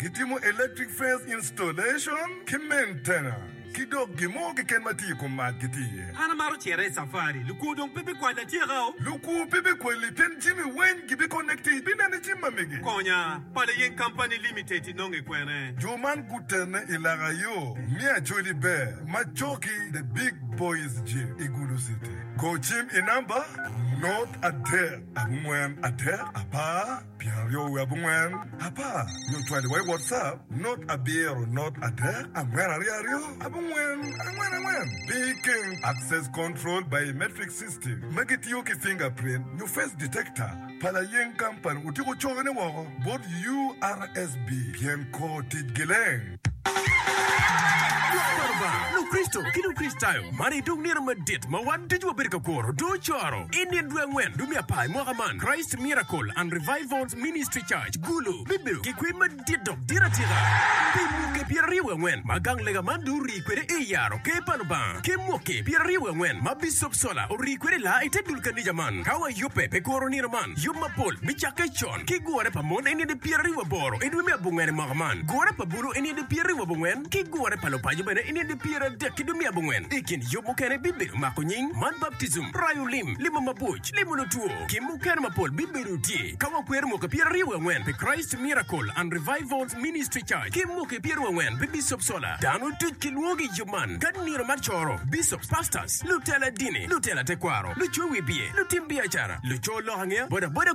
Gitimo electric fence installation ki maintenance ki dok gin mo keken ma tye i kom mac gitye iye. An amaro cere i safari. Lukwo dong pe bikwali atyeka o. Lukwo pe bikwali pien jami weng gibiconnect-ti. Ibinene jami ma mege. Konya, Pala Yeng Company Limited inonge kwene? Jo man gutene i laka yo me Acholi Ber ma coki The Big Boys Gym i Gulu City. Go cim i namba not adek abongwen adek apar. pyeraryo wiye abongwen apar nyo cwadi wa i WhatsApp not abiro not adek angwen aryo aryo abongwen angwen angwen pi keng Access Control Biometric System ma gitiyo ki fingerprint nyo face detector pa layeng company otiko cokone woko bot URSB pien kor ticgi leng. Lukricito ki Lukricitayo, man aye dong nino madit ma wan ducu wabedo ka kuro. Dong ocoro i nino dwe angwen dwe me apar i mwaka man, Christ Miracle and Revival Ministry Church, Gulu, bibedo ki kwim madit dok dit atika. Pi mwaki pyeraryo wiye angwen ma gang lega man dong orii kwede i yaro Ker pa Lubanga, ki mwaki pyeraryo wiye angwen ma Bicop Sola orii kwede laa i te dul kanica man, ka wayubbe pi kuro nino man, yub mapol bicakke con. ki gure pa mon eni di pyera ribu aboro i dwe me abongwen i mwaka man, gure pa bulu eni di pyera ribu abongwen, ki gure pa lupaco bene eni di pyera adek ki dwe me abongwen. I kin yub mukene bibedo mako nying, mat baptism, rayo lim, limo mabwoc, limo lutwo, ki mukene mapol bibedo tye. Ka wakwero mwaki pyera ribu angwen pi Christ Miracle and Revivals Ministry Church ki mwaki pyera ribu angwen pi Bishop Solar, dano duc kilwongo i yub man ka nino mar coro, Bishops, Pastors, lutela dini, lutela tekwaro, lucowi biye, lutim biacara, luco lok angeya, bodaboda,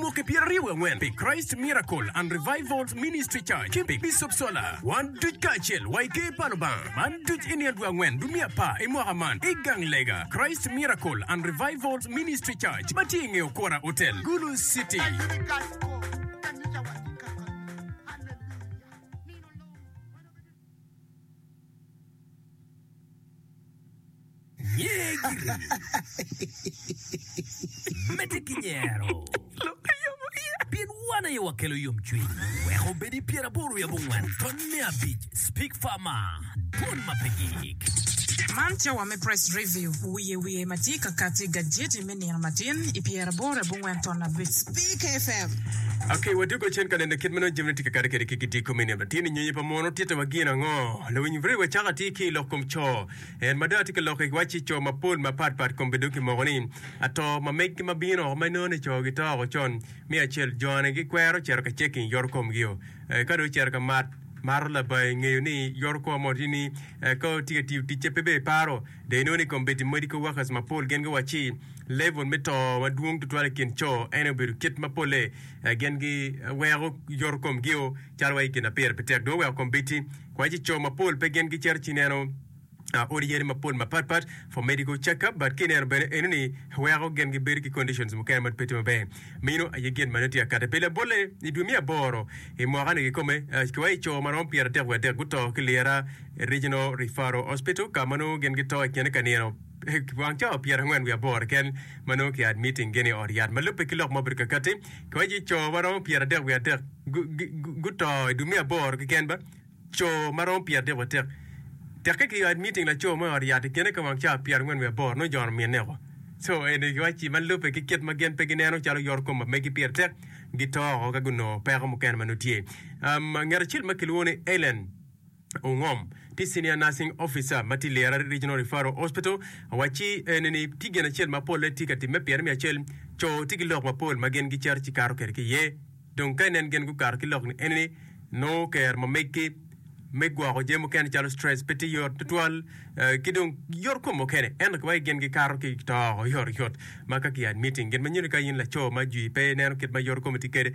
Mwaki pyeraryo wangwen pi Christ Miracle and Revivals Ministry Church ki pi Bishop Sola. Wan duc kacel wa i Ker pa Lubanga man duc i nino dwe angwen dwe me apar i mwaka man i gang lega Christ Miracle and Revivals Ministry Church ma tye i nge Okora Hotel, Gulu City. Medde ki nyero, pien wan aye wakelo yomcwiny. Wek obed i pyeraboro wiye abongwen tony me abic, Speak Farmer, Dwol ma pe gik. Man cawa me Press Review, wiye wiye ma tye ka kati, gajeti me me nino matin i pyeraboro abongwen ton abic. Ok, wadwogo cen ka neno kit ma nongo jami nongo tye ka kati kwede ki gidiko me nino matin i nyonyo pa mono. Tittiwa gin ango? Lawiny Murray wacako atir ki i lok kom co. En ma dong atye ka lok i wacci co mapol mapat pat komgi dong kimoko ni ato ma meggi ma bino woko ma inongo ni co gito woko con me acel. Jone gikwero cito ka ceking yoto komgio. Ka dong ocito ka mat, mato labayi ngeyo ni yoto kom mono tye ni ka tye ka tiyo ticce pe ber paro. Dong inongo ni kombeddi medical workers mapol gin giwacci level me to madwong tutwal i kin co ene obedo kit ma polle gin giweko yoto komgio calo wa i kin apire pe tek dong oweko kombeddi kwacci co mapol pe gin gicito ci neno odi yadi mapol mapat pat for medical check up but kineno bene eno ni weko gin gibedo ki conditions mukene ma pe tye maber meno aye gin ma nongo tye akate pi labolle i dwe me aboro i mwaka ni kikome ki wa i co marom pyeratek wadek guto ki lira Regional Referral Hospital, ka ma nongo gin gito i kine ka nino wang cawa pyerangwen wiye aboro keken ma nongo ki admitting gin i ot yat. Ma lubbe ki lok ma obedo kakati, kiwaco ni co ma romo pyeradek wiye adek guto i dwe me aboro keken ba, co ma romo pyeradek wiye atek. Tekke ki admitting laco mo i ot yat i kine ka wang cawa pyerangwen wiye aboro nongo jono minne oko. So eni kiwaci ma lubbe ki kit ma gin pe gineno calo yoro kom ma megi pire tek, gito oko ka gunongo peko mukene ma nongo tye. Um, ngat acel ma kilwongo ni Ellen, Ongom tye Senior Nursing Officer ma tye i Lira Regional Referral Hospital. Awacci ene ni tye gin acel ma polle tye ka timme pire me acel, co tye ki lok mapol ma gin gicito ci kato kwede ki iye. Dong ka inen gin gukato ki lok-ni ene ni nongo kero ma meggi me gwoko jami mukene calo stress pe tye yot tutwal ki dong yot kom mukene. Ento ki wai gin gikato ki to oyotoyot ma ka ki admitting. Gin ma nyuto ni ka in laco ma jwi pe ineno kit ma yot komi tye kwede,